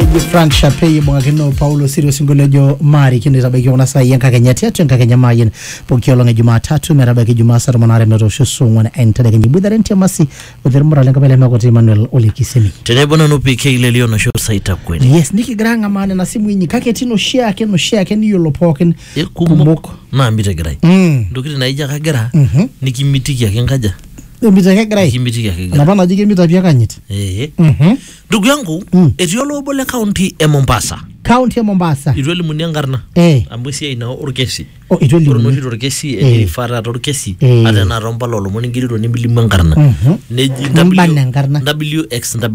eji frank shape ibung'akino paulo siri osinkolio ojo maarikino eitabaiki kuna saai enkakenya tiatua enkakenya maayin pooki olong e jumatatu metabaiki jumaa saa tomon aare metoosho saa ong'uan entedekenya iboitare ntiamasi otermura lenkop ele mekoti emmanuel olekisemi tenebo nanu pk lelio nosho saita kweli yes nikigira ang'amaa nena simui inyi kake etii noshiake noshiake niyiolo pookin kumok naa mitegirai Mm. ntokitin naijo kagira nikimitiki ake nkaja emitiki ake egirai kimitiki ake egira enapa naji kemita pii akanyit Eh. Mhm. ndugu yangu Mm. etii olobo le kaunti e mombasa kaunti e mombasa itu elimuni enkarna Eh. amu esiai naa orkesi Oh, itu ore elimuni. noshi torkesi Eh. eirifaa taata orkesi Eh. ata enaa tompala olomoni ingerito nemilimu enkarna Mhm. neji Nimbana enkarna. wxw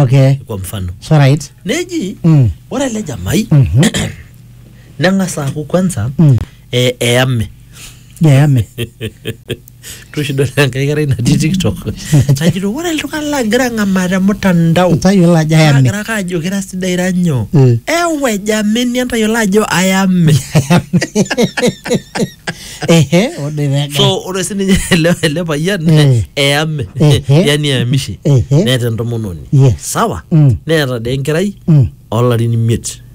okay kwa mfano so right neji Mm. ore ele jamai Mhm. neng'as aaku kwanza Mm. eh, eyame yeyame tushidol enkae kerai natii tiktok najito ore iltung'anak lagira ang'amaa te mtandao Tayiolo ajo ayame. agira ake ajo kira sidai ira nyoo Mm. ewe jameni entayiolo ajo ayame Ehe, ode pega. so ore sininye ele ele payian Mm. eyame Ehe. yani eyamishe Ehe. neeta entomononi Yes. sawa Mm. neeta dee enkerai Mm. olarin imiet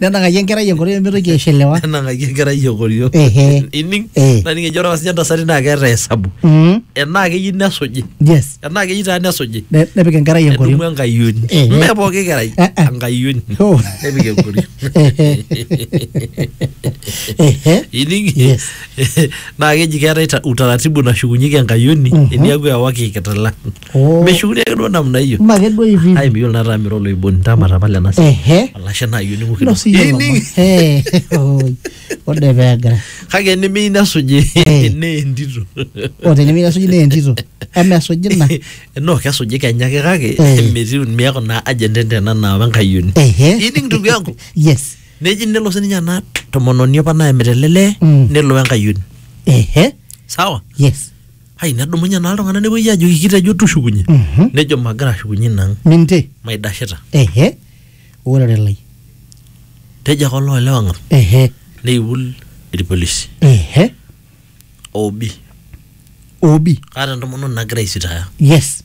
nenang'aki enkerai enkoitoi pemitoki aishelewa nenang'aki enkerai enkoriong Ehe. ining Eh. naning ejo ore apa sinye ntasati naa keeta hesabu Mm, enaa keyieu nesuji yes enaa keyieu taa nesuji Ne- nepik enkerai edumu enkoriong enkayioni Eh. mme pooki kerai Eh, eh. enkayioni Oh. nepik enkoriong Ehe. ining Yes. naa keji keetae ta- utaratibu nashukunyieki enkayioni Mhm. eniaku ewaki kitala Oh. meshukuni ake duo namna hiyo Mme ake duo hivi. ai miyiolo nataa mira oloiboni ntama tapala ena siai Ehe. alashe naa yieu ning'u Ilo sii kidogo yiolo Ining- ma- Eh, oi. Ode peegira. kake enimiyieu nesuji Eh. nee entito O tenimiyieu nesuji naa entito. Eme esuji ina. no kesuji kenya ake kake Eh. metii miaku naa agent entena naa wenkayioni Ehe. ining ndugu yangu Yes. neji nelo sininye ena tomononi apa naemita ele lee Mm. nelo wenkayioni Ehe. sawa Yes. ai nedumunye naa iltung'anak nepuoi ajoki kitejo tushukunye Mhm. nejo magira ashukunye inang minte maidashita ehe orere lai tejo ake oloolewa ng'am ehe neiul irpolisi ehe obi obi kaata entomononi nagira aisitaya yes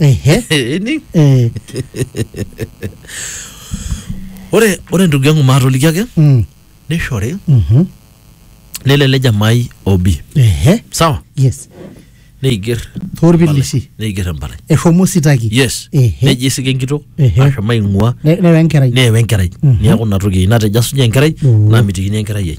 Ehe. Ening? Eh, ore ore ndugu yangu maatoliki ake mm, nishori mhm, nelo ele jamai obi ehe. sawa Yes. neiger Torpilisi. neiger empalai Eshomo sitaki. yes Ehe. neji isika enkitok Ehe. ashomo aing'ua Ne- Newa enkerai. neewa enkerai Mhm. neeku ina toki natejo asunye enkerai Oh. namitikini enkerai ai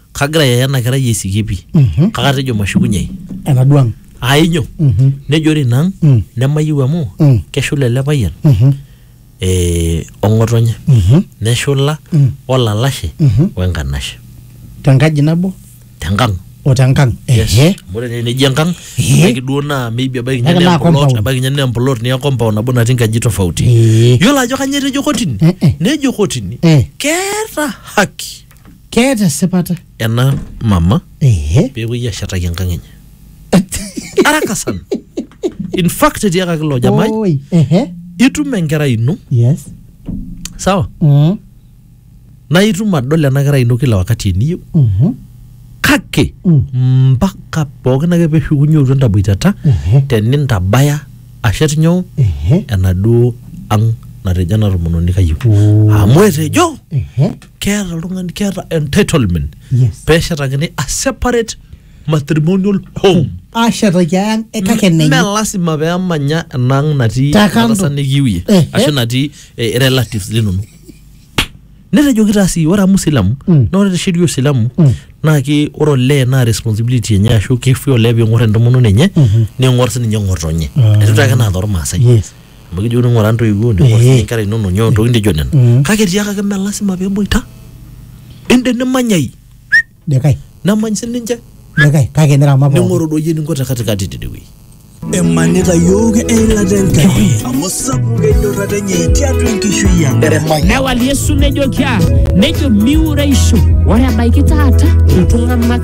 kagira yaya ena kerai aisikie pi Mhm. kaka tejo mashukunyei enaduo ang ainyo Mhm. nejo ore ina ang Mm. nemayieu amu Mm. keshula ele payian Mhm. eh, ong'otonye Mhm. neshula Mm. olalashe Mhm. wenkanashe tenkaji nabo tenkang o tenkang ehe Amu ore naa neji enkang Ehe. ebaiki duo naa maybe ebaiki Ebaiki ninye naa naa emplot compound. ebaiki ninye naa emplot niya compound nabo natii nkaji tofauti Ee. yiolo ajo kanyio etejo kotini Eh, eh. nejo kotini Eh. keeta haki keeta esipata ena mama ehe peepuoi ashetaki enkang enye araka sana in fact etiakaki ilo jamai Oi, ehe itum enkerai ino yes sawa Mm, naa itum adol ena kerai ino kila wakati eniyieu mhm, kake Mm. mpaka pookin ake peshukunye otu entaboitata ehe tenintabaya ashet nyoo ehe enaduo ang natejo ena tomononi kayieu Oh. amu etejo ehe keeta oltung'ani keeta entitlement Yes. peeshetakini a separate matrimonial home ashetaki ang eh, kake Me- enenye me lasima peemanya enang natii Te kando. enatasa nikiwie Ehe. ashu natii eh, relatives linonok netejoki taa sii ore amu silamu Mm. na ore te sheria osilamu Mm. naa ki ore olee naa responsibility enye ashu kifui olee ping'or entomononi enye ning'or sininye ng'otonye Ah. etu taake naa tormaasai Yes. amu kijokini ng'ura ntoiwuo ning'or Eh. sii nkera inono nyoo ntokitin nijo nena Mm. kake tiakaki mme lasima peboita inde nimanyai Dekai, nemany sininche dekai, kake nirama pookin. ning'oru doi eninko te katikati tidie wueji emanita yooki eilata enkai amu sapuk enyorrata enye tiatua enkishui ang Newal Yesu nejoki aa nejo miureisho. Ore ebaiki taata iltung'anak